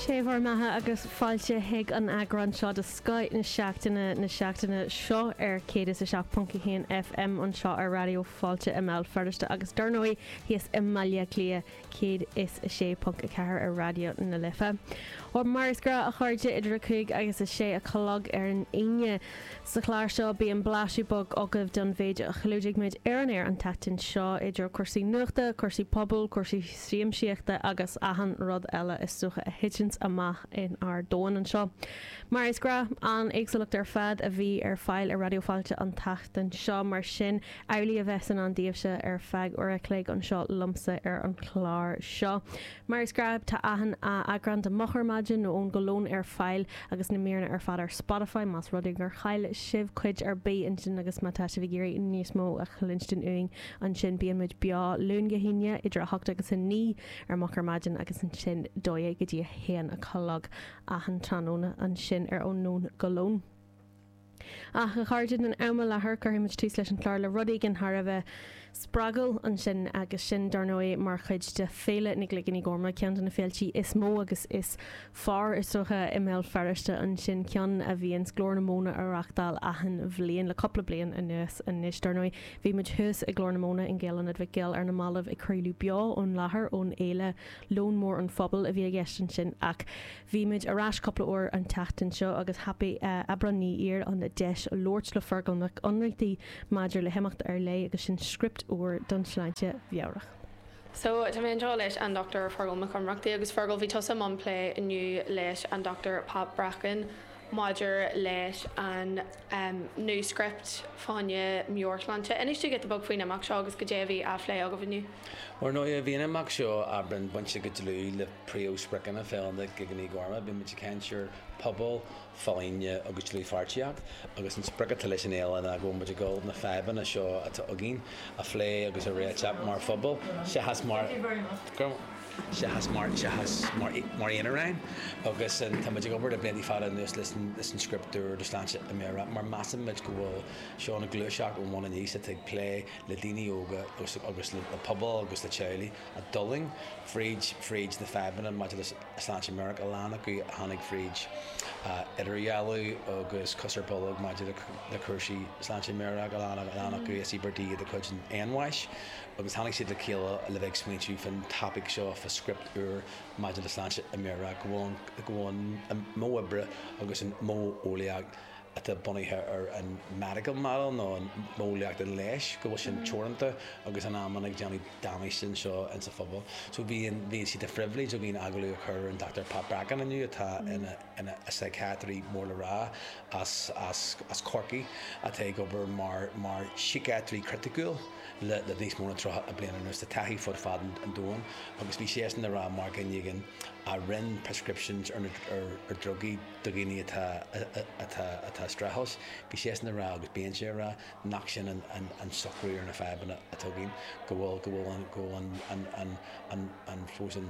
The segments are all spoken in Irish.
Sé bhur mbeatha agus fáilte chuig an eagrán seo de Scoith na Seachtaine na seachtaine seo ar 107.1 FM anseo ar Raidió Fáilte i mBéal Feirste agus dar ndóigh thíos i mBaile Átha Cliath 106.4 ar Raidió na Life. Mar is gnách a chairde idir a cúig agus a sé a chlog ar an Aoine. Sa chlár seo bíonn blaiseadh beag agaibh den mhéid a chlúdaigh muid ar an aer an tseachtain seo idir cúrsaí nuachta, cúrsaí pobail, cúrsaí siamsaíochta agus achan rud eile is dócha a thiteanns amach in ár domhan anseo. Mar is gnách, an éagsúlacht ar fad a bhí ar fáil ar Raidió Fáilte an tseachtain seo, mar sin amhlaidh a bheas i ndán daoibhse ar feadh uair a chloig anseo liomsa ar an chlár seo. Mar is gnách, tá achan eagrán de Moch ar Maidin Ó Nóin go Lón ar fáil agus na míreanna ar fad ar Spotify más rud é gur chaill sibh cuid ar bith ansin agus má tá sibh ag iarraidh níos mó a chluinstin uainn Ansin bíonn muid beo Luan go hAoine idir a hocht agus a naoi ar moch ar maidin agus ansin dó dhéag go dtí a haon a chlog achan tráthnóna, ansin ar ó nóin go lón. Ach, a chairde, don am i láthair cuirfidh muid tús leis an chlár le rud éigin thar a bheith spreagúil ansin agus sin, dar ndóigh, mar chuid de Féile na gCloigíní Gorma, ceann de na féiltí is mó agus is Fearr is dócha i mBéal Feirste ansin ceann a bhíonns Glór na Móna á reachtáil achan bhliain le cúpla bliain anuas anois. Dar ndóigh, bhí muid thuas i Glór na Móna in Gael-Ionad Mhic Goill ar na mallaibh ag craoladh beo ón láthair ón fhéile Lón Mór an Phobail a bhí i gceist ansin ach bhí muid ar ais cúpla uair an tseachtain seo agus thapaigh Aibreán Ní Fhíor an deis labhairt le Feargal Mac Ionnrachtaigh maidir le himeacht ar leith agus sin script úr don tsláinte mheabhrach. So, tá mé anseo leis an Dr Feargal Mac Ionnrachtaigh agus Feargal bhí tusa i mbun plé inniu leis an Dr Pat Bracken maidir leis an new script fá choinne meabhairshláinte. Inis dúinn giota beag faoin imeacht seo agus goidé a bhí á phlé agaibh inniu. Ar ndóigh, bhí an imeacht seo Aibreán bainte go dlúth le príomhspriocanna Fhéile na gCloigíní Gorma, bímid ag caint ar phobal, folláine agus dlúthpháirtíocht, agus an sprioc atá leis an fhéile ná go bhfuil muid ag dul na fadhbanna seo atá againn a phlé agus a réiteach mar phobal seachas mar, seachas mar, seachas mar, mar aonaráin agus tá muid ag obair le blianta fada anuas leis an, leis an Script Úr do Shláinte Mheabhrach mar measann muid go bhfuil seo ina gluaiseacht ón bhun aníos atá ag plé le daoine óga agus, agus le pobal agus le teaghlaigh a d'fhulaing fríd, fríd na fadhbanna maidir le Sláinte meabhrach a lán acu a tháinig fríd idirdhealú agus cos ar bolg maidir le cúrsaí sláinte meabhrach a lán acu is íobartaigh iad de chuid an fhéinbháis agus tháinig siad le chéile le bheith ag smaointiú faoin topaic seo fá script úr maidir le sláinte meabhrach go bhfuil an modh oibre agus an modh eolaíoch atá bunaithe ar an medical model nó an mhodheolaíocht an leighis, go bhfuil sin teoranta agus in amanna ag déanamh damáiste anseo insa phobal. So bhí, bhí sé de phribhléid againn agallamh a chur ar an Dochtúir Pat Bracken inniu atá ina, ina shíciatraí mór le rá as, as, as Corcaigh atá ag obair mar, mar shíciatraí criticiúil le, le níos mó ná tríocha bliain anuas, a bhfuil taithí fud fad an domhain agus bhí seisean a rá mar go dtugann daoine prescriptions ar na, ar, ar drugaí. do dhaoine atá, atá, atá ag streachailt, bhí seisean a rá agus bíonn sé a rá nach sin an, an, an socrú ar na fadhbanna atá againn, go bhfuil, go bhfuil an, go bhfuil ann, ann, ann, ann, ann, fós an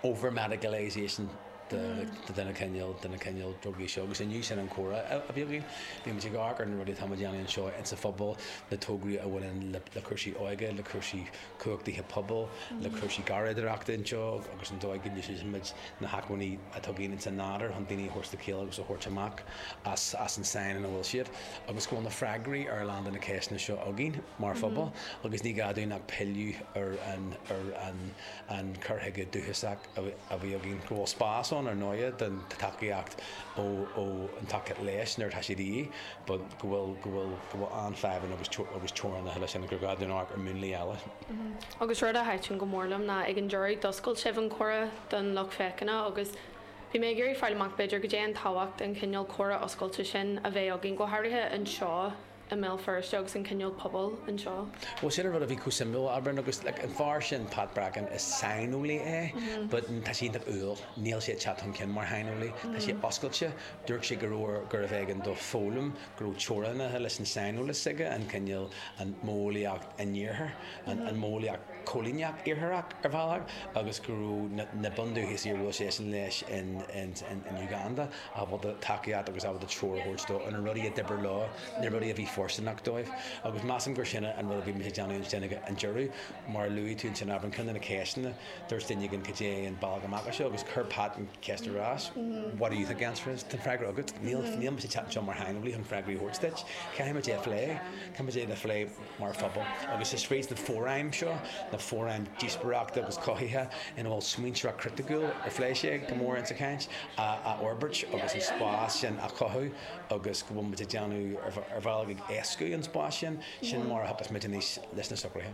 over-medicalisation de, de na cineál, de na cineál drugaí seo agus inniu sin an comhrá a bhí againn. Bhí muid ag amharc ar na rudaí atá muid a dhéanamh anseo insa phobal, na tograí a bhaineann le, le cúrsaí óige, le cúrsaí cumhachtaithe pobail le cúrsaí garraíodóireachta anseo agus an dóigh go n-úsáideann muid na hacmhainní atá againn insan nádúr chun daoine a thabhairt le chéile agus a thabhairt amach as an sáinn ina bhfuil siad agus go bhfuil na freagraí ar a lán de na ceisteanna seo againn mar phobal agus ní gá dúinn ach pilleadh ar an cur chuige dúchasach. a bhí againn, go bhfuil spás ann, ar ndóighe, don tacaíocht ó, ó, an tacaíocht leighis nuair atá sé de dhíth, but go bhfuil, go bhfuil, go bhfuil an-fhadhbanna agus, agus teorainneacha leis agus gur gá dúinn amharc ar mhúnlaí eile. Agus rud a thaitn go mór liom ná ag an deireadh d'oscail sibh an comhrá don lucht féachana agus bhí mé ag iarraidh fáil amach b'fhéidir caidé an tábhacht an cineál comhrá oscailte sin a bheith againn go háirithe anseo i mBéal Feirste agus an cineál pobail anseo. Bhuel, sin an rud a bhí chomh suimiúil, a Aibreáin, agus an fear sin, Pat Bracken, is saineolaí é but tá sé iontach umhal, níl sé ag teacht chun cinn mar shaineolaí, tá sé oscailte, dúirt sé go raibh, gurbh éigean dó foghlaim, go raibh teorainneacha leis an tsaineolas s'aige, an cineál, an mhodheolaíocht iartharach, an mhodheolaíocht choilíneach iartharach ar bhealach agus go raibh na bundúchasaigh a bhuail seisean leo in Uganda, ábalta tacaíocht agus ábalta treoir a thabhairt dó ar na rudaí a d'oibir leo, na rudaí a bhí fóirsteanach dóibh. Agus measaim gur sin an rud a bhí muid ag déanamh ansin ag an deireadh. Mar a luaigh tú ansin, Aibreán, ceann de na ceisteanna, dúirt duine againn cad é an bealach amach as seo agus chuir Pat an cheist ar ais, what do you think the answer is? Tá an freagra agat, níl, níl muid ag teacht anseo mar shaineolaí chun freagraí a thabhairt duit, caithfidh muid é a phlé, caithfidh muid é a phlé. mar phobal, agus is fríd na fóraim seo, na fóraim díospóireachta agus cothaithe ina bhfuil smaointeoireacht chriticiúil, ar phléigh sé go mór insa chaint? a fhorbairt agus an spás sin a chothú agus go bhfuil muid ag déanamh, ar bhealach ag éascú an spáis sin, sin mar a thiocfas muid aníos leis na socruithe.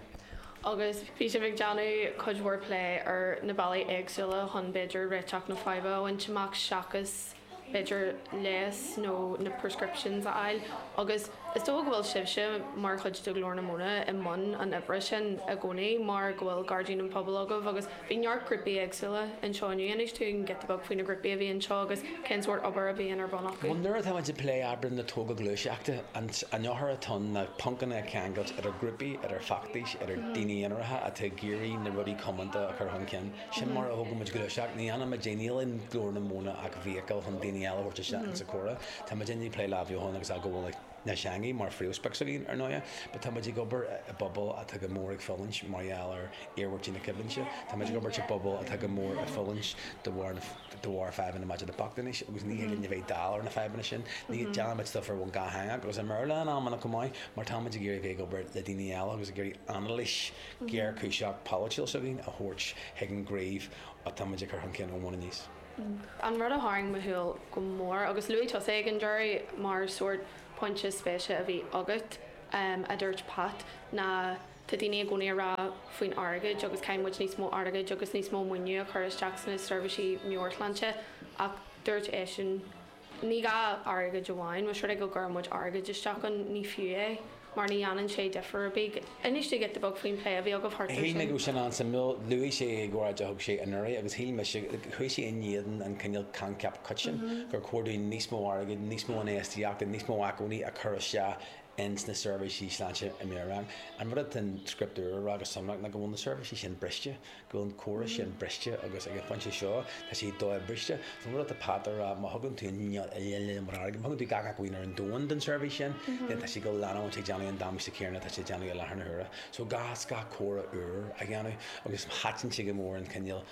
Agus bhí sibh ag déanamh cuid mhór plé ar na bealaí éagsúla chun b'fhéidir réiteach na faidhbe a bhaint amach seachas, b'fhéidir leigheas nó na prescriptions a fháil agus is dócha go bhfuil sibhse mar chuid de Ghlór na Móna i mbun an oibre sin i gcónaí mar go bhfuil Gairdín an Phobail agaibh agus bhí neart grúpaí éagsúla anseo inniu. Inis dúinn giota beag faoi na grúpaí a bhí anseo agus cén sórt obair a bhíonn ar bun acu? Nuair atá muid ag plé oibre na tógáil gluaiseachta, an eochair atá ann ná poncanna a cheangailt idir grúpaí, idir feachtais, idir daoine aonaracha atá ag iarraidh na rudaí comónta a chur chun cinn. Sin mar a thuigeann muid gluaiseacht. Ní dhéanann muid níl i nGlór na Móna ach vehicle chun daoine eile a thabhairt isteach insa comhrá. Tá muidinne ag plé le hathbheochan agus athghabháil na teanga mar phríomhsprioc s'againn, ar ndóighe, but tá muid ag obair i bpobal atá go mór ag fulaingt mar gheall ar iarmhairtí na coimhlinte. Tá muid ag obair i bpobal atá go mór ag fulaingt de bharr na, de bharr fadhbanna maidir le bochtanas agus ní thig linn a bheith dall ar na fadhbanna sin. Ní, déanann muid stuif ar bhonn dhátheangach agus i mBéarla in amanna chomh maith mar tá muid ag iarraidh a bheith ag obair le daoine eile agus ag iarraidh anailís géarchúiseach polaitiúil s'againn a thabhairt chuig an gcraobh atá muid ag cur chun cinn ón mbun aníos. An rud a tharraing mo shúil go mór, agus luaigh tusa é ag an deireadh mar sórt pointe spéise a bhí agat, a dúirt Pat, ná tá daoine i gcónaí ag rá faoin airgead agus caithfidh muid níos mó airgid agus níos mó maoiniú a chur isteach sna seirbhísí meabhairshláinte ach dúirt eisean, Ní gá airgead amháin, más rud é go gcuireann muid airgead isteach ann, ní fiú é, mar ní dhéanann sé difear ar bith. Inis dúinn giota beag faoin bplé a bhí agaibh thart air sin. Shíl mé go raibh sin an-suimiúil. Luaigh sé é ag óráid a thug sé anuraidh agus shíl mise, chuaigh sé in éadan an cineál coincheap coiteann gur chóir dúinn níos mó airgid, níos mó infheistíochta, níos mó acmhainní a chur isteach ins na seirbhísí sláinte meabhrach. An rud atá an Script Úr ag rá go sonrach ná go bhfuil na seirbhísí sin briste, go raibh an córas sin briste agus ag an phointe seo tá sé dobhriste. Is maith liom tá Pat ag rá má thugann tú gach acmhainn ar an domhan don tseirbhís sin, then tá sé ag dul leanúint ag déanamh an damáiste céanna atá sé ag déanamh i láthair na huaire. So is gá córas úr a dhéanamh agus thaitin sé go mór an cineál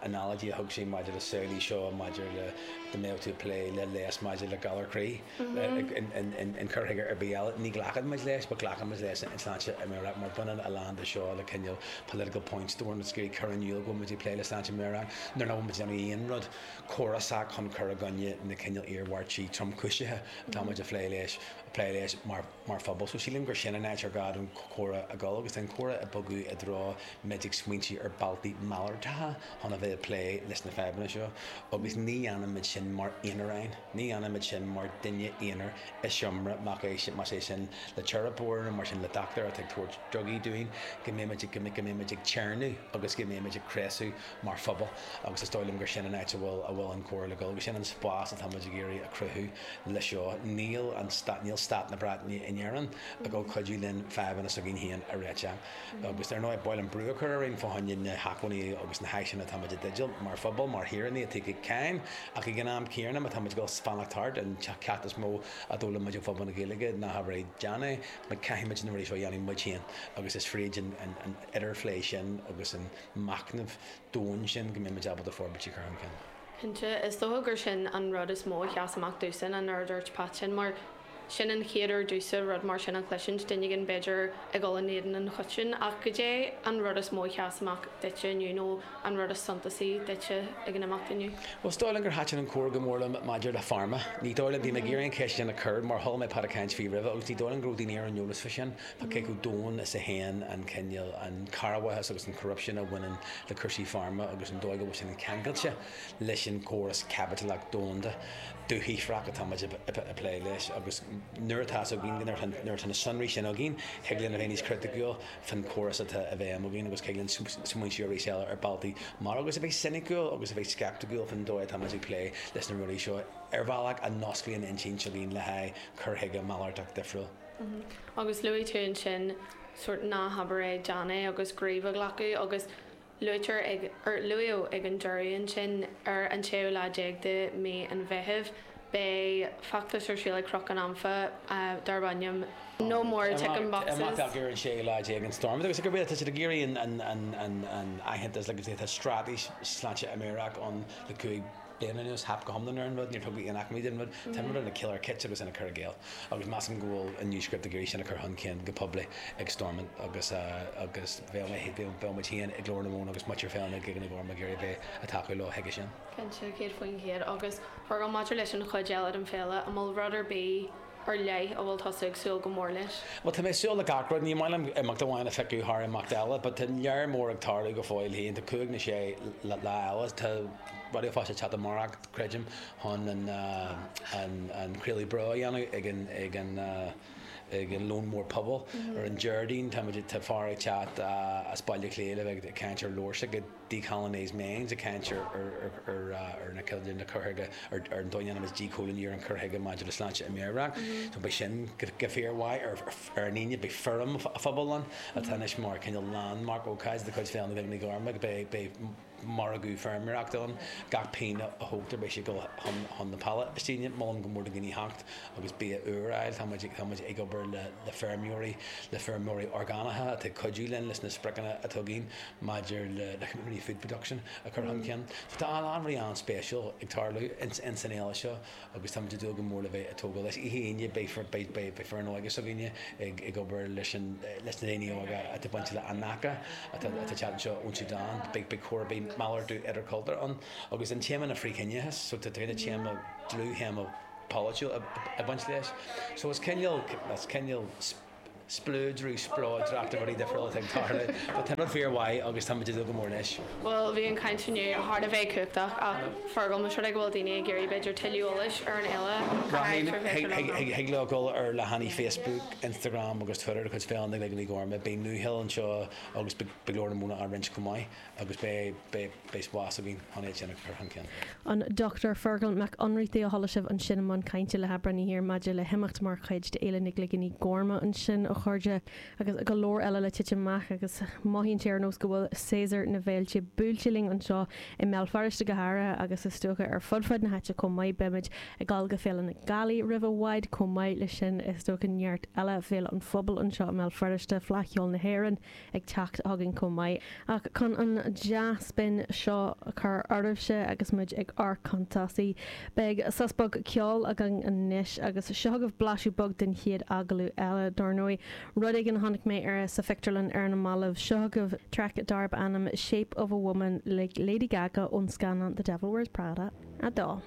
analogy a thug sé maidir le saol í seo maidir le dá mbeadh tú ag plé le leigheas maidir le galar croí, an cur chuige ar bith eile. Ní ghlacfadh muid leis, but glacann muid leis an tsláinte mheabhrach, mar baineann a lán de seo le cineál political point scoring is ag cur in iúl go bhfuil muid ag plé le sláinte mheabhrach nuair nach bhfuil muid ag déanamh aon rud córasach chun cur i gcoinne na cineál iarmhairtí tromchúisithe atá muid a phlé leis, a plé leis mar phobal. So sílim gur sin an áit ar gá don chomhrá a dhul, agus tá an comhrá ag bogadh i dtreo muid ag smaointiú ar bealtaí malartacha chun a bheith ag plé leis na fadhbanna seo, agus ní dhéanann muid sin mar aonaráin. Ní dhéanaimid sin mar duine aonair i seomra, más é sin, más é sin le teiripeoir nó más é sin le dochtúir atá ag tabhairt drugaí dúinn, go mbeimid, go mbeimid ag téarnamh agus go mbeimid ag cneasú mar phobal agus is dóigh liom gur sin an áit a bhfuil, a bhfuil an comhrá ag dul agus sin an spás atá muid ag iarraidh a chruthú le seo. Níl an, níl stát na Breataine in Éirinn ag dul cuidiú linn fadhbanna s'againn féin a réiteach. Agus ar ndóigh, ba mhaith linn brú a chur orainn fá choinne na hacmhainní agus na háiseanna atáimid i dteideal mar phobal, mar shaoránaigh atá ag íoc cáin, ach ag an am céanna má táimid ag fanacht thart, an ceacht is mó a d'fhoghlaim muid ó phobal na Gaeilge ná habair é, déan é, mar caithfimid na rudaí seo a dhéanamh muid féin agus is fríd an idirphlé sin agus an machnamh domhain sin go mbeimid ábalta forbairt a chur chun cinn. Cinnte, is dócha gur sin an rud is mó a sheas amach domhsa, an rud a dúirt Pat ansin, mar. Sin an chéad uair domhsa rud mar sin a chloisint, duine éigin b'fhéidir ag dhul in éadan an choitinn, ach goidé an rud is mó a sheas amach duitse inniu nó an rud is suntasaí duitse ag an imeacht inniu? Bhuel, is dóigh liom gur thaitin an comhrá go mór liom maidir le Pharma. Ní dóigh liom, bhí mé ag iarraidh an cheist sin a chur mar chuala mé Pat ag caint faoi roimhe agus ní dóigh liom go raibh daoine ar an eolas fá sin, fá cé chomh domhain is a théann an cineál, an cearrbhachas agus an corruption a bhaineann le cúrsaí Pharma agus an dóigh go bhfuil sin ceangailte leis an gcóras caipitileach domhanda. dúshaothrach atáimid a phlé leis agus nuair atá fhios againn nuair atá na sonraí sin againn thig linn a bheith níos criticiúil faoin chóras atá i bhfeidhm againn agus thig linn smaointiú arís eile ar bealtaí mar agus a bheith soiniciúil agus a bheith sceipticiúil faoin dóigh atáimid ag plé leis na rudaí seo ar bhealach a n-osclaíonn intinn againn le haghaidh cur chuige malartach difriúil. Agus luaigh tú ansin sórt 'ná habair é, déan é' agus 'gníomh a ghlacadh' agus Luaitear ag, or, Luaíodh ag an deireadh ansin, ar an séú lá déag de Mhí an Mheithimh, beidh feachtas ar siúl ag Cnoc an Anfa darb ainm No More Tickin' Boxes. Imeacht ar an séú lá déag in Stormont agus tá siad ag iarraidh an aitheantas agus an straitéis sláinte meabhrach ann le cúig bliana agus theip go hiomlán ar an rud, níor tugadh aon acmhainn don rud. Tá an rud ina chiolar chiot agus ina chur i gcéill, agus measaim go bhfuil an New Script ag iarraidh sin a chur chun cinn go poiblí ag Stormont agus agus bheadh mé, bheadh muid féin ag Glór na Móna agus muintir Fhéile na gCloigíní Gorma ag iarraidh a bheith, ag tacú leo chuige sin. Cinnte, céad faoin chéad, agus a Fhearghail maidir leis an chuid eile den fhéile, an bhfuil rud ar bith, ar leith a bhfuil tusa ag súil go mór leis? Bhuel, tá mé ag súil le gach rud. Ní maith liom imeacht amháin a phiocadh thar imeacht eile, but tá lear mór ag tarlú go fóill féin. Tá cúig nó sé lá eile, tá Raidió Fáilte ag teacht amárach, creidim, chun an craoladh beo a dhéanamh ag an, ag an, ag an Lón Mór Pobail. Ar an Déardaoin, tá muid, tá fear ag teacht as Baile Átha Cliath le bheith ag caint ar leabhar s'aige, 'Decolonised Minds' ag caint ar an chur chuige, ar an dóigh a ndéanaimid 'díchoilíniú' ar an chur chuige maidir le sláinte meabhrach. Beidh sin go fíormhaith ar an Aoine, beidh feirm phobail ann atá anois mar cineál landmark, ócáid de chuid Fhéile na gCloigíní Gorma, beidh margadh feirmeoireachta ann, gach pingin a thógtar beidh sé ag dul chun na Palaistíne. Molaim go mór do dhaoine theacht agus bia úr a fháil, tá muid ag obair le feirmeoirí, le feirmeoirí orgánacha atá ag cuidiú linn leis na spriocanna atá againn. maidir le company food production a chur chun cinn. So tá a lán rudaí an-spéisiúil ag tarlú ins an fhéile seo agus táimid ag dúil go mór le bheith ag tógáil leis. Oíche Aoine beidh foireann óige s'againne ag obair leis na daoine óga atá bainteach le Anaka atá ag teacht anseo ón tSúdáin. Beidh cór, beidh malartú idirchultúrtha ann agus an téama ná frith-chiníochas so tá cineál téama, dlúth-théama polaitiúil ag baint leis. So is cineál, is cineál. spleodrú, spleodracht de rudaí difriúla atá ag tarlú. Tá na daoine fíormhaith agus táimid ag dúil go mór leis. Bhuel, bhí an caint inniu thar a bheith cumhachtach ach a Fheargail, más rud é go bhfuil daoine ag iarraidh b'fhéidir tuilleadh eolais ar an fhéile, cá háit ar féidir leo dul? Thig leo dul ar leathanaigh Facebook, Instagram agus Twitter de chuid Féile na gCloigíní Gorma. Beidh Uachtar Chluanaí anseo agus beidh Glór na Móna á roinnt chomh maith. Agus beidh físeán againn an oíche sin a chur chun cinn. An Dr Feargal Mac Ionnrachtaigh a chuala sibh ansin i mbun cainte le hAibreáin Uí Hir maidir le himeacht mar chuid d'Fhéile na gCloigíní Gorma ansin, a chairde, agus go leor eile le titim amach agus mothaíonn sé ar nós go bhfuil séasúr na bhféilte buailte linn anseo i mBéal Feirste go háirithe agus is dócha ar fud fad na háite chomh maith. Beimid ag dul go Féile na Gealaí roimh i bhfad chomh maith leis sin, is is dócha neart eile Féile an Phobail anseo i mBéal Feirste, Fleadh Cheoil na hÉireann, ag teacht chugainn chomh maith, ach chun an dea-spin seo a chur oraibhse agus muid ag ár gcuntasaí, beidh sos beag ceoil againn anois, agus seo agaibh blaiseadh beag den chéad agallamh eile, dár ndóigh, rud éigin a chonaic mé sa phictiúrlann ar na mallaibh, seo agaibh traic darb ainm 'Shape of a Woman' le Lady Gaga ón scannán The Devil Wears Prada 2.